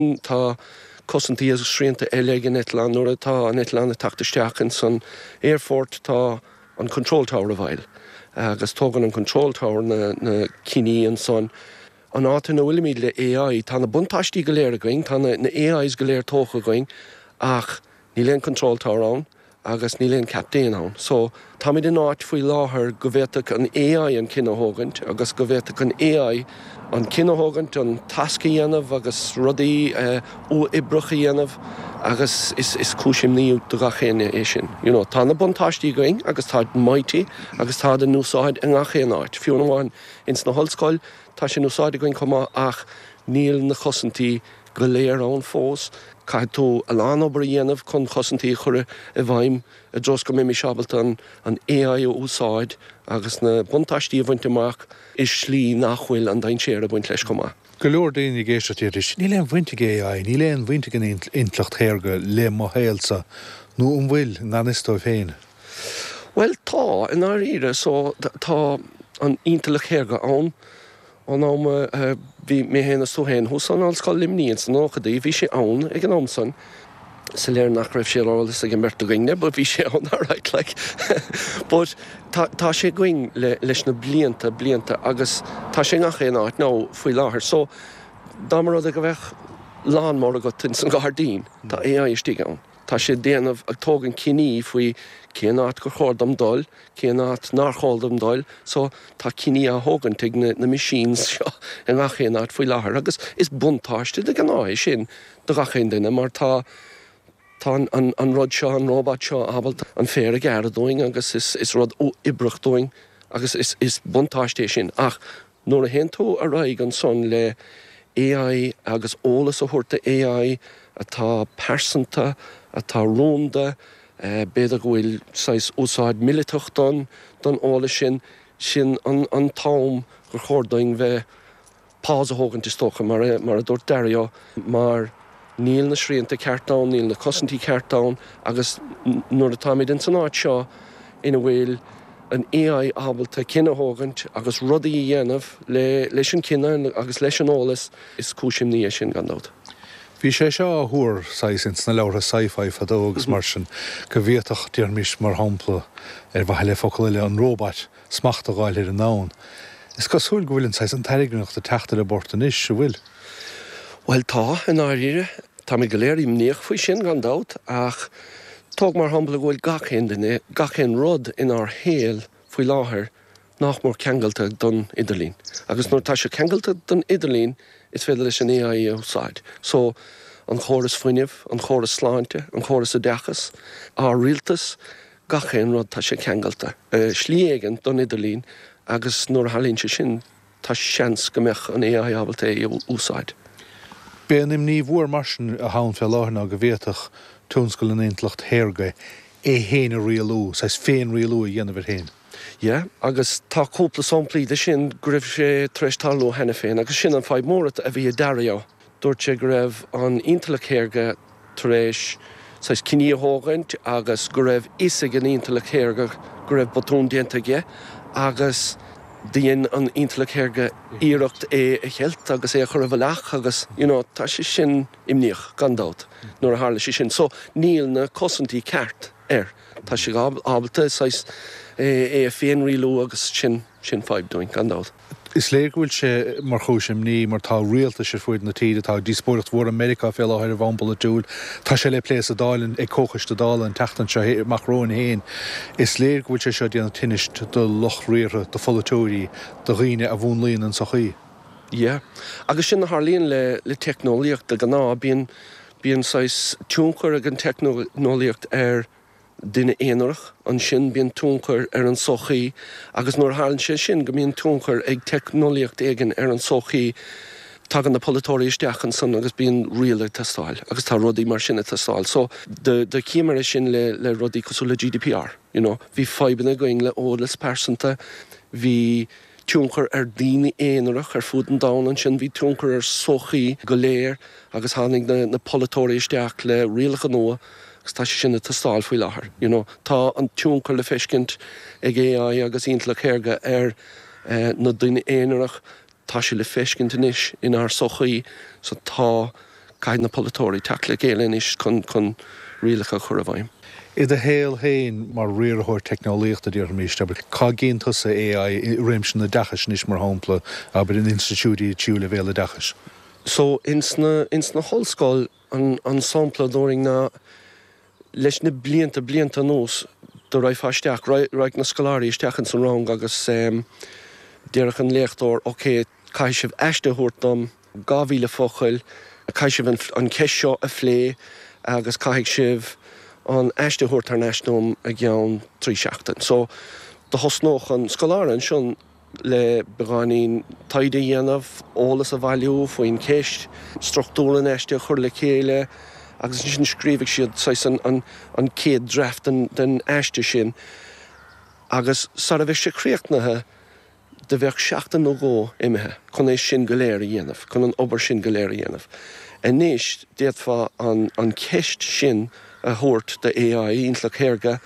Tá cosaintí agus srianta eile ag an eitleán. Nuair atá an eitleán ag teacht isteach ins an aerfort tá an control tower i bhfeighil agus tógann an control tower na cinní ansan. An áit ina bhfuilimid le AI, tá na buntáistí go léir againn, tá na AIs go léir tógtha againn ach níl aon control tower ann agus níl aon captaen ann so táimid in áit faoi láthair go bhféadfadh an AI an cinneadh a thógaint agus go bhféadfadh an AI an cinneadh a thógaint an tasc a dhéanamh agus rudaí uathoibreach a dhéanamh agus is is cúis imní do gach éinne é sin. You know tá na buntáistí againn agus táid mighty agus táid in úsáid i ngach aon áit, fiú amháin ins na hollscoil tá sé in úsáid againn chomh maith ach níl na cosaintí a go léir ann fós. Caithfidh tú a lán obair a dhéanamh chun chosaintí a chur i bhfeidhm i dtreo is go mbeimis ábalta an AI a úsáid agus na buntáistí a bhaint amach i slí nach bhfuil an dainséar ag baint leis chomh maith. Go leor daoine ag éisteacht, déarfaidís, níl aon bhaint ag AI, níl aon bhaint ag an intleacht shaorga le mo shaolsa, nó an bhfuil, i ngan fhios dóibh féin? Bhuel, tá, i ndáiríre. So, tá an intleacht shaorga ann. Ón am a bhí mé féin is tú féin thuas ann, Ollscoil Luimnigh ins na nóchaidí, bhí sé ann ag an am san. Is léir nach raibh sé ar eolas ag an beirt againne but bhí sé ann alright like. But tá, tá sé againn le, leis na blianta, blianta agus tá sé i ngach aon áit now faoi láthair. So dá mba rud é go bheadh lawn-mower agat ins an gairdín, tá AI istigh ann. Tá sé ag déanamh, ag tógaint cinní faoi cén áit gur chóir dom dul, cén áit nár chóir dom dul, so tá cinní á thógaint ag na na machines seo i ngach aon áit faoi láthair agus is buntáiste de ghnáth é sin do gach aon duine mar tá tá an an rud seo, an robot seo ábalta an féar a ghearradh dúinn agus is is uathoibríoch dúinn agus is is buntáiste é sin ach Nuair a théann tú ar aghaidh ansan le AI agus eolas a thabhairt do AI atá pearsanta, atá rúnda, b'fhéidir go bhfuil saghas úsáid míleata don don eolas sin, sin an an t-am gur chóir dúinn bheith pause a thógaint is dócha mar a mar a dúirt Dario mar, Níl na srianta cearta ann, níl na cosaintí cearta ann agus nuair atáimid ins an áit seo ina bhfuil an AI ábalta cinneadh a thógaint agus rudaí a dhéanamh leis an cinneadh agus leis an eolas, is cúis imní é sin gan dabht. Bhí sé seo á thuar saghas ins na leabhartha sci-fi fadó agus mar sin go bhféadfadh, déarfaimis mar shampla, ar mhaithe le focal eile, an róbait smacht a dh'fháil ar an ndomhan. Is cosúil go bhfuil an saghas an tairngreacht ag teacht ar an bport anois, an bhfuil? Bhuel, tá, i ndáiríre. Táimid go léir imníoch faoi sin, gan dabht, ach tóg mar shampla go bhfuil gach aon duine, gach aon rud inár shaol faoi láthair nach mór ceangailte don idirlíon. Agus nuair atá sé ceangailte don idirlíon, is féidir leis an AI é a úsáid. So, an chóras fuinnimh, an chóras sláinte, an chóras oideachais, ár rialtas, gach aon rud tá sé ceangailte i slí éigint don idirlíon agus nuair a tharlaíonn sé sin tá seans go mbeadh an AI ábalta é a úsáid. B'é an imní mhór mar sin atá ann fé láthair ná go bhféadfadh tionscal an intleacht shaorga é féin a rialú, saghas féin-rialú a dhéanamh air féin. Yeah agus tá cúpla samplaí de sin go raibh sé tar éis tarlú cheana féin agus sin an fadhb mhór a bhí ag Dario. Dúirt sé go raibh an intleacht shaorga tar éis saghas cinní a thógaint agus go raibh fhios ag an intleacht shaorga go raibh botún déanta aige agus do dhein an intleacht shaorga iarracht é a cheilt agus é a chur i bhfolach agus you know tá sé sin imníoch gan dabht nuair a tharla sé sin so níl na cosaintí ceart air. Tá sé ábalta saghas é a féinrialú agus sin sin fadhb dúinn gan dabht. Is léir go bhfuil sé mar chúis imní mar tá rialtais ar fuaid na tíre, tá díospóireacht mhór i Meiriceá fé láthair ar bhonn polaitiúil, tá sé le plé sa Dáil in, ag Comhchoiste Dála an tseachtain seo, Macron féin. Is léir go bhfuil sé seo ag déanamh tinnis do lucht riaracháin, do pholaiteoirí, do dhaoine a mhúnlaíonn an tsochaí. Yeah. Agus sin a tharlaíonn le, le teicneolaíocht de ghnáth, bíonn, bíonn saghas tionchar ag an teicneolaíocht ar, Duine aonarach, ansin bíonn tionchar ar an sochaí agus nuair a tharlaíonn sé sin go mbíonn tionchar ag teicneolaíocht éigin ar an sochaí tagann na polaiteoirí isteach ansan agus bíonn riail ag teastáil agus tá rudaí mar sin ag teastáil so do chímear é sin le rudaí cosúil le GDPR, you know, bhí fadhbanna againn le eolas pearsanta, bhí. tionchar ar daoine aonarach ar fud an domhain ansin, bhí tionchar ar sochaí go léir agus tháinig na polaiteoirí isteach le rialacha nua agus tá sé sin ag teastáil faoi láthair, you know. Tá an tionchar le feiscint ag AI agus Intleacht Shaorga ar na daoine aonarach, tá sé le feiscint anois inár sochaí so tá. Caithfidh na polaiteoirí teacht le chéile anois chun rialacha a chur i bhfeidhm. I do shaol féin mar riarthóir teicneolaíochta, déarfaimis, abair, cá gcíonn tusa AI i réimse an oideachais anois, mar shampla, abair, in institiúidí tríú leibhéal oideachais? So, ins na, ins na hollscoil, an sampla a thabharfainn ná. Leis na blianta, blianta anuas, do raghfá isteach, raghadh na scoláirí isteach ins an rang agus déarfadh an léachtóir, OK, caithfidh sibh aiste a thabhairt dom, 2000 focal, caithfidh sibh an cheist seo a phlé agus caithfidh sibh an aiste a thabhairt thar n-ais dom i gceann trí sheachtain. So, do thosnódh an scoláire ansin, le beagáinín taighde a dhéanamh, eolas a bhailiú faoin cheist, struchtúr an aiste a chur le chéile agus ansin scríobhadh siad saghas an chéad draft den aiste sin agus sara bheadh sé críochnaithe do bheadh seachtain nó dhó imithe chun é sin go léir a dhéanamh, chun an obair sin go léir a dhéanamh. Anois d'fhéadfá an cheist sin a thabhairt do AI, Intleacht Shaorga,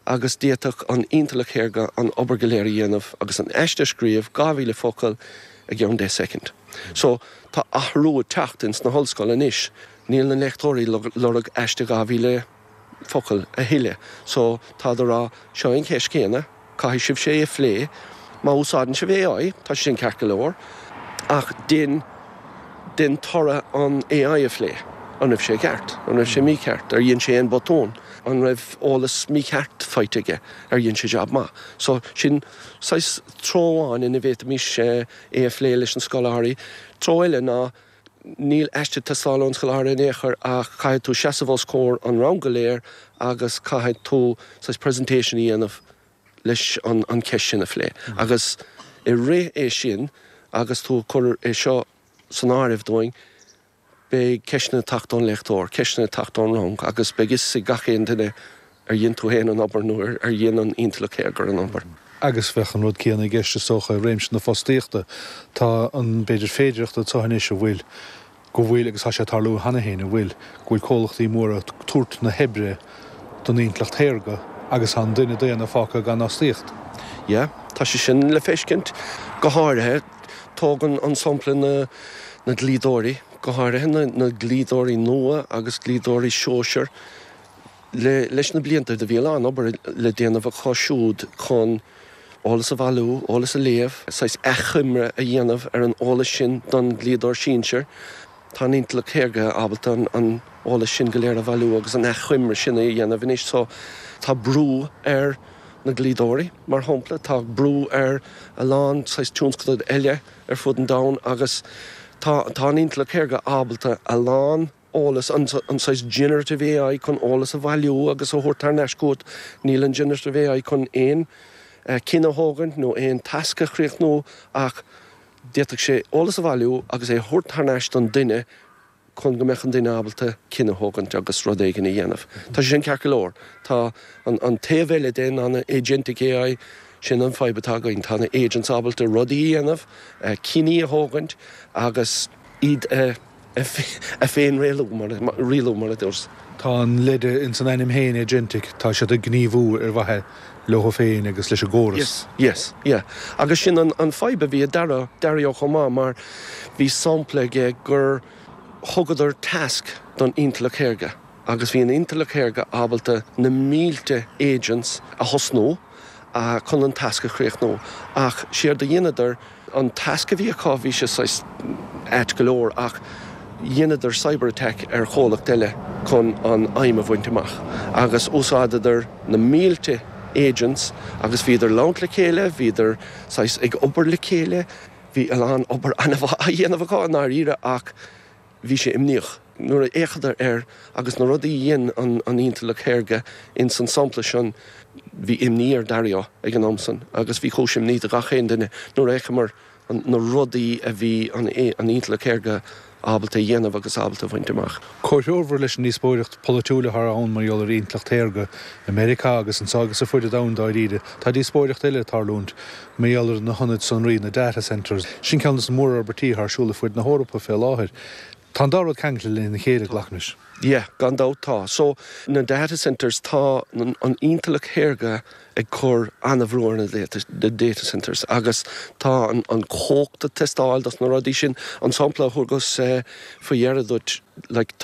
agus d'fhéadfadh an intleacht shaorga an obair go léir a dhéanamh agus an aiste a scríobh, 2000 focal, i gceann deich soicind. So, tá athrú ag teacht ins na hollscoil anois, níl na léachtóirí ag lorg aiste 2000 focal a thuilleadh. So, táid ag rá, seo é an cheist céanna, caithfidh sibhse é a phlé, má úsáideann sibh AI, tá sé sin ceart go leor, ach dein, den toradh an AI a phlé. An raibh sé ceart? An raibh sé mícheart? Ar dhein sé aon botún? An raibh eolas mícheart faighte aige? Ar dhein sé jab maith? So, sin saghas treo amháin ina bhféadfaimis é a phlé leis na scoláirí. Treo eile ná níl aiste ag teastáil ón scoláire in aon chor ach caithfidh tú seasamh os comhair an rang go léir agus caithfidh tú saghas presentation a dhéanamh leis an cheist sin a phlé. Agus i rith é sin, agus tú ag cur é seo san áireamh dúinn, beidh ceisteanna ag teacht ón léachtóir, ceisteanna ag teacht ón rang agus beidh fhios ag gach aon duine ar dhein tú fhéin an obair nó ar dhein an intleacht shaorga an obair. Agus bheadh an rud céanna i gceist is dócha i réimse na fostaíochta. Tá an, b'fhéidir, féidireacht ann anois a bhfuil go bhfuil, agus tá sé ag tarlú cheana féin, a bhfuil, go bhfuil comhlachtaí móra ag tabhairt na hoibre don intleacht shaorga agus tá an duine daonna fágtha gan fhostaíocht. Yeah, tá sé sin le feiscint. Go háirithe, tógann an sampla na na dlíodóirí, go háirithe na na dlíodóirí nua agus dlíodóirí sóisir. Le leis na blianta do bhí a lán obair le déanamh acu siúd chun, Eolas a bhailiú, eolas a léamh, saghas achoimre a dhéanamh ar an eolas sin don dlíodóir sinsir. Tá an intleacht shaorga ábalta an t-eolas sin go léir a bhailiú agus an achoimre sin a dhéanamh anois. So, tá brú ar na dlíodóirí, mar shampla. Tá brú ar a lán saghas tionscadail eile ar fud an domhain agus tá an intleacht shaorga ábalta a lán eolas, an saghas generative AI chun eolas a bhailiú agus a thabhairt thar n-ais chugat. Níl an generative AI chun aon cinneadh a thógaint nó aon tasc a chríochnú ach d'fhéadfadh sé eolas a bhailiú agus é a thabhairt thar n-ais don duine chun go mbeadh an duine ábalta cinneadh a thógaint agus rud éigin a dhéanamh. Tá sé sin ceart go leor. Tá an taobh eile de, ná na agentic AI, sin an fhadhb atá againn. Tá na agents ábalta rudaí a dhéanamh, cinní a thógaint agus iad a. é féin a rialú mar, rialú mar a dúirt. Tá an leide ins an ainm féin agentic, tá siad ag gníomhú ar mhaithe leo féin agus leis an gcóras. Yes, yes, yeah. Agus sin an fhadhb a bhí ag Dario chomh maith mar bhí sampla aige gur thugadar tasc don intleacht shaorga agus bhí an intleacht shaorga ábalta na mílte agents a thosnú, chun an tasc a chríochnú. Ach séard a dheineadar, an tasc a bhí acu, bhí sé saghas ait go leor, ach dheineadar cyber-attack ar chomhlacht eile chun an aidhm a bhaint amach. Agus d'úsáideadar na mílte agents agus bhíodar ag labhairt le chéile, bhíodar saghas ag obair le chéile, bhí a lán obair an-mhaith á dhéanamh acu i ndáiríre ach Bhí sé imníoch. Nuair a d'fhéachadar air agus na rudaí a dhein an intleacht shaorga ins an sampla san, bhí imní ar Dario ag an am san agus bhí cúis imní do gach aon duine nuair a fheacamair na rudaí a bhí an intleacht shaorga ábalta a dhéanamh agus ábalta a bhaint amach. Comhthreomhar leis an díospóireacht polaitiúil atá ann mar gheall ar intleacht shaorga, i Meiriceá agus anseo agus ar fud an domhain dáiríre, tá díospóireacht eile ag tarlúint, Mar gheall ar na hionaid sonraí, na data centres, sin ceann de na mórfhorbairtí atá ar siúl ar fud na hEorpa fé láthair. Tá an dá rud ceangailte lena chéile, Tá. glacaim leis. Yeah, gan dabht tá. So, na data centres, tá an intleacht shaorga ag cur an-bhrú ar na data centres agus tá an chumhacht ag teastáil dos na rudaí sin. An sampla a thugas faoi dheireadh duit, like, tá.